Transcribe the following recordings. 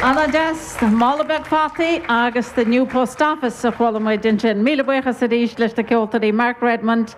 An-deas, Mála beag fataí agus The New Post Office a chuala muid ansin. Míle buíochas arís leis na ceoltóirí Mark Redmond,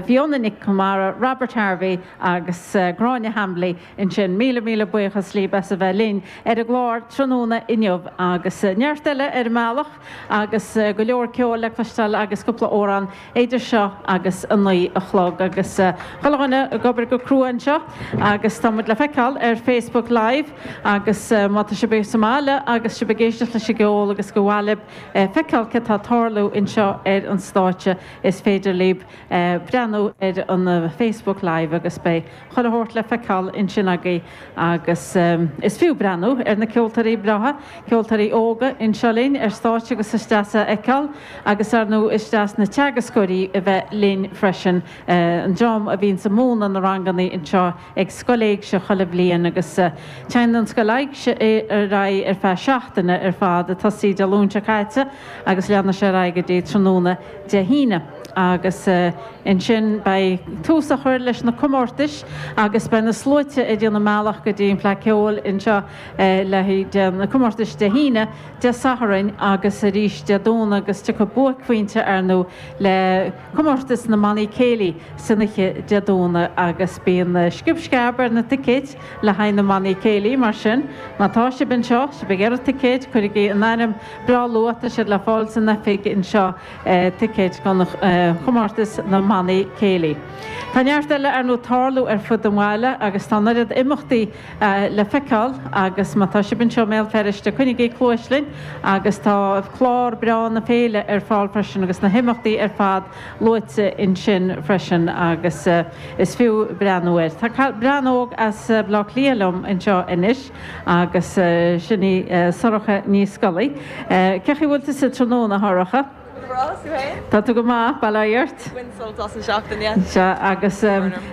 Fiona Nic Conmara, Robert Harvey agus Gráinne Hambly ansin. Míle míle buíochas libh as a bheith linn ar an gclár tráthnóna inniu agus neart eile ar an mbealach agus go leor ceoil le cloisteáil agus cúpla amhrán idir seo agus a naoi a chlog agus chuile dhuine ag obair go crua anseo agus tá muid le feiceáil ar Facebook Live agus má tá sibh sa mbaile agus sibh ag éisteacht leis an gceol agus gur mhaith libh feiceáil céard atá ag tarlú anseo ar an stáitse is féidir libh breathnú ar an Facebook Live agus beidh chuile shórt le feiceáil ansin agaibh. Agus is fiú breathnú ar na ceoltóirí breátha, ceoltóirí óga anseo linn ar stáitse agus is deas a fheiceáil agus ar ndóigh is deas na teagascóirí a bheith linn freisin, an dream a bhíonns ag múineadh na ranganna anseo ag Scoil Éigse chuile bhliain agus téann an Scoil Éigse ar aghaidh ar feadh seachtaine ar fad, tosaíodh Dé Luain seo caite agus leanfaidh sé ar aghaidh go dtí tráthnóna Dé hAoine. Agus. Ansin beidh tús á chur leis na comórtais agus beidh na sluaite ag déanamh a mbealach go dtí an Fleadh Ceoil anseo le haghaidh Dé, na comórtais Dé hAoine, Dé Sathairn agus arís Dé Domhnaigh agus tiocfaidh buaicphointe ar ndóigh le comórtas na mBannaí Céilí san oíche Dé Domhnaigh agus bíonn sciob sceab ar na ticéid le haghaidh na mBannaí Céilí mar sin má tá sibh anseo, sibh ag iarraidh ticéid, cuirigí in áirithe breá luath, tá siad le fáil san oifig anseo. ticéid do chomórtas na mbannaí céilí. Tá neart eile ar ndóigh ag tarlú ar fud an bhaile agus tá an oiread imeachtaí le feiceáil agus má tá sibh anseo i mBéal Feirste coinnigí cluais linn agus tá clár breá na féile ar fáil freisin agus na himeachtaí ar fad luaite ansin freisin agus is fiú breathnú air. Tá bean óg as Bleá Cliath liom anseo anois. Agus sin í Sorcha Ní Scolaí. Cé chaoi bhfuil tusa tráthnóna, a Shorcha? Go breá, is tú féin? Tá tú go maith, bail ó Dhia ort. Baint sult as an seachtain, yeah. Sea, agus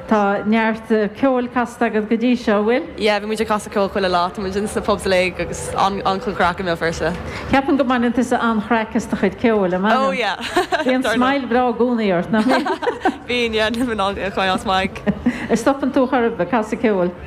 tá neart ceoil casta agat go dtí seo, bhfuil? Yeah, bhí muid ag casadh ceoil chuile lá, tá muid ins na pubs uilig agus an-chuid chraic i mBéal Feirste. Ceapaim go mbaineann tusa an-chraic as do chuid ceoil, an mbaineann? Oh yeah, dar ndóigh. Bíonn smile breá i gcónaí ort, nach mbíonn? Bíonn, yeah, níl mé in ann é a chailleadh as m'aghaidh. An stopann tú chor ar bith ag casadh ceoil?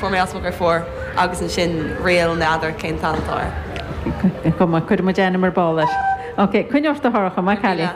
Fuair mé as mo gur fuair agus ansin ríl, n'fheadar cén t-ainm atá air. Is cuma, cuirfidh muid ainm ar ball air. Ok, coinnigh ort a Shorcha, maith an cailín.